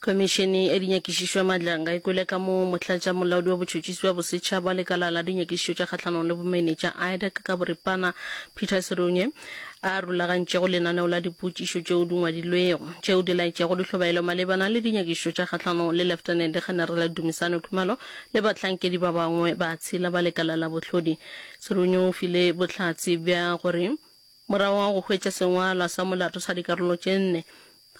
Khomišene ya Dinyakišišo ya Maatla ga e kwele ka moo Motlatšamolaodi wa Botšhotšhisi bja Bosetšhaba wa Lekala la Dinyakišišo tša Kgahlanong le Bomenetša, IDAC, ka boripana, Peter Serunye, a rulagantšego lenaneo la dipotšišo tšeo di ngwadilwego, tšeo di laetšago dihlobaelo malebana le dinyakišišo tša kgahlanong le Leftenente Generale Dumisani Khumalo le bahlankedi ba bangwe ba tshela ba lekala la bohlodi. Serunye o file bohlatse bja gore morago ga go hwetša sengwalwa sa molato sa dikarolo tše nne,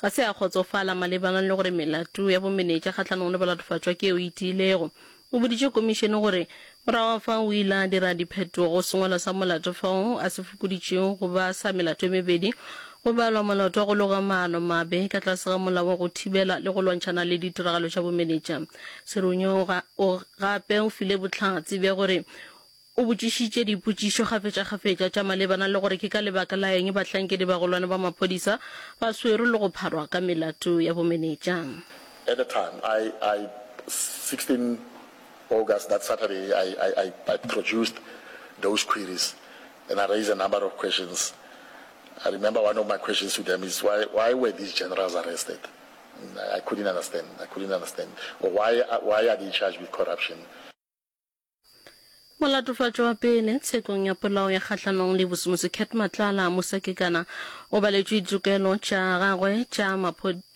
Ga se a kgotsofala malebana le gore melato ya bomenetša kgahlanong le balatofatšwa ke yeo e tiilego. O boditše komišene gore morago ga fao o ile a dira diphetogo go sengwalo sa molato fao a se fokoditšego go ba sa melato e mebedi go balwa molato wa go loga maano mabe ka tlase ga Molao wa go Thibela le go Lwantšhana le Ditiragalo tša Bomenetša. Serunya o gape o file bohlatse bja gore O botšišitše dipotšišo kgafetšakgafetša tša malebana le gore ke ka lebaka la eng bahlankedibagolwane ba maphodisa ba swerwe le go pharwa ka melato ya bomenetša. At the time, I, I, 16 August, that Saturday, I, I, I, I produced those queries and I raised a number of questions. I remember one of my questions to them is why, why were these generals arrested? I couldn't understand, I couldn't understand. Or why, why are they charged with corruption? Molatofatšo wa pele tshekong ya polao ya kgahlanong le bosemosi Cat Matlala Musakekana o baletšwe ditokelo tša gagwe tša maphodisa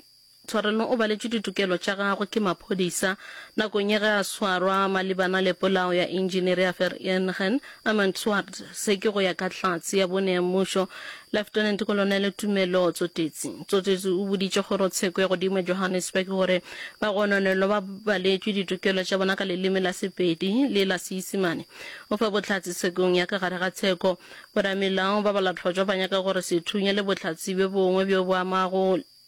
Tshwarelo o baletšwe ditokelo tša gagwe ke maphodisa nakong ya ge a swarwa malebana le polao ya Engineer ya Vereeniging Amantswaard se ke go ya ka Hlatse ya bone ya mmušo Lieutenant Kolonele Tumelo Tsotetsi Tsotetsi o boditše kgorotsheko ya godimo ya Johannesburg gore bagononelwa ba baletšwe ditokelo tša bona ka leleme la Sepedi le la Seisemane. O fa bohlatse tshekong ya ka gare ga tsheko. Boramelao ba Balatlhotšwa ba nyaka gore sethunya le bohlatse bjo bongwe bjo bo amago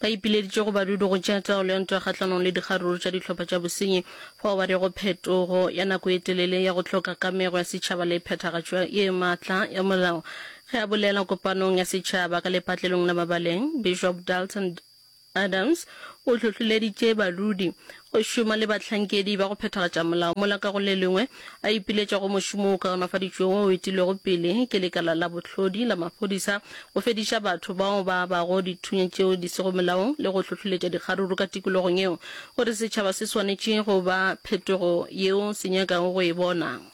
Ba ipileditše go badudu go tšea taolo ya ntwa kgahlanong le dikgaruru tša dihlopha tša bosenyi fao ba rego phetogo ya nako e telele ya go hloka kamego ya setšhaba le phethagatšo ye maatla ya molao. Ge a bolela kopanong ya setšhaba ka lepatlelong la Mabaleng, Bishop Dalton Adams o hlohleleditše badudi Go šoma le bahlankedi ba go phethagatša molao mola ka go le lengwe a ipiletša go mošomo o kaonafaditšwego o etilwego pele ke lekala la bohlodi la maphodisa go fediša batho bao ba bago dithunya tšeo di sego molaong le go hlohloletša dikgaruru ka tikologong yeo gore setšhaba se swanetše go ba phetogo yeo se nyakago go e bona.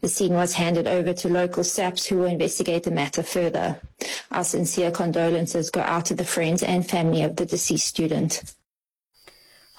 The scene was handed over to local SAPS who will investigate the matter further. Our sincere condolences go out to the friends and family of the deceased student.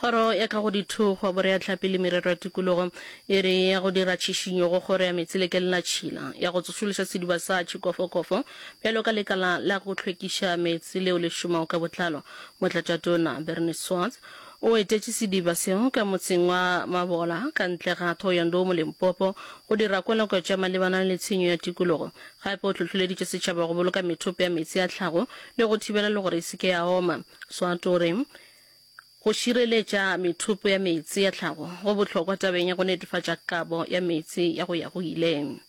Kgoro ya ka go Dithogo, Boreatlhapi le Merero ya Tikologo e re ya go dira tšhišinyo go Kgoro ya Meetse le Kelnatšhila ya go tsošološa sediba sa Tšhikofokofo bjalo ka lekala la go hlwekiša meetse leo le šomago ka botlalo. Motlatšatona Bernie Swarts O etetše sediba seo ka motseng wa Mabola ka ntle ga Thohoyandou mo Limpopo go dira kweloko tša malebana le tshenyo ya tikologo. Gape o hlohloleditše setšhaba go boloka methopo ya meetse a tlhago le go thibela le gore e se ke ya oma. Swart o re, Go šireletša methopo ya meetse ya tlhago go bohlokwa tabeng ya go netefatša kabo ya meetse ya go ya go ile.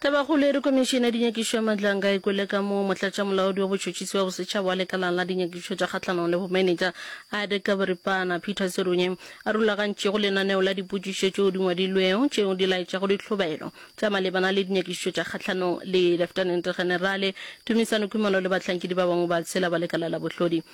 Tabagoleri Komišene ya Dinyakišo ya Matlanga e kwele ka moo motlatšamolaodi wa botšhotšhisi bja bosetšhaba wa lekalang la dinyakišo tša kgahlanong le bomenetša Ade Kabripana Peter Serunye a rulagantšego lenaneo la dipotšišo tšeo di ngwadilwego tšeo di laetšago ditlhobaelo tša malebana le dinyakišo tša kgahlanong le Leftenente Generale Tumisano Khumalo le bahlankedi ba bangwe ba tshela ba lekala la bohlodi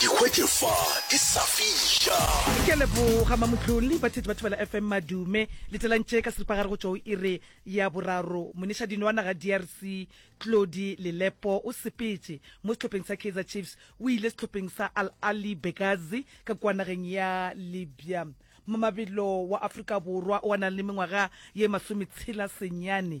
Ikhwetše fa ke sa fija. Ke a leboga mamotlolli ba thetsi ba thobela FM madume le telantše ka seripagare go tšwa o ire ya boraro moneša dino wa naga DRC Tlodi Lelepo o sepetše mo sehlopheng sa Kaizer Chiefs o ile sehlopheng sa Al Ahly Benghazi ka kua nageng ya Libya Mamabelo wa Afrika Borwa o a nang le mengwaga ye masometshela senyane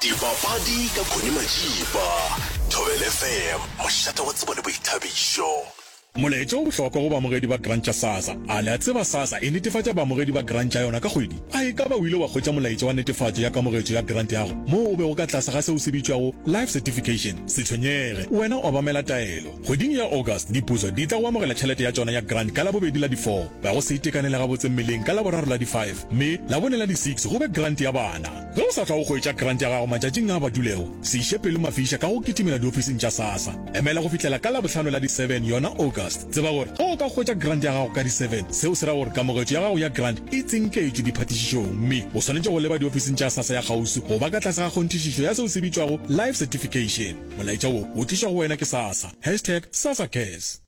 Dipapadi ka Connie Majiba, Thobela FM, mošate wa tsebo le boithabišo. Molaetša o bohlokwa go baamogedi ba Grant tša SASSA. A le a tseba SASSA e netefatša baamogedi ba Grant tša yona ka kgwedi? A e ka ba o ile wa hwetša molaetša wa netefatšo ya kamogetšo ya Grant ya go moo o bego ka tlase ga seo se bitšwago Life Certification? Se tshwenyege, wena o obamela taelo. Kgweding ya August, Dipuso di tla go amogela tšhelete ya tšona ya Grant ka Labobedi la di 4, ba go se itekanele gabotse mmeleng ka Laboraro la di 5, mme Labone la di 6 go be Grant ya Bana. Ge o sa tla go hwetša krante ya gago matšatšing a a badulego, se iše pelo mafiša ka go kitimela diofising tša SASSA. Emela go fihlela ka Labohlano la di 7, yona August. Tseba gore ge o ka hwetša krante ya gago ka di 7, seo se ra gore kamogetšo ya gago ya krante e tsinketšwe diphatišišong mme o swanetše go leba diofising tša SASSA ya kgauswi go ba ka tlase ga kgonthišišo ya seo se bitšwago Life Certification. Molaetša wo o tlišwa go wena ke SASSA. Hashtag SASSACares.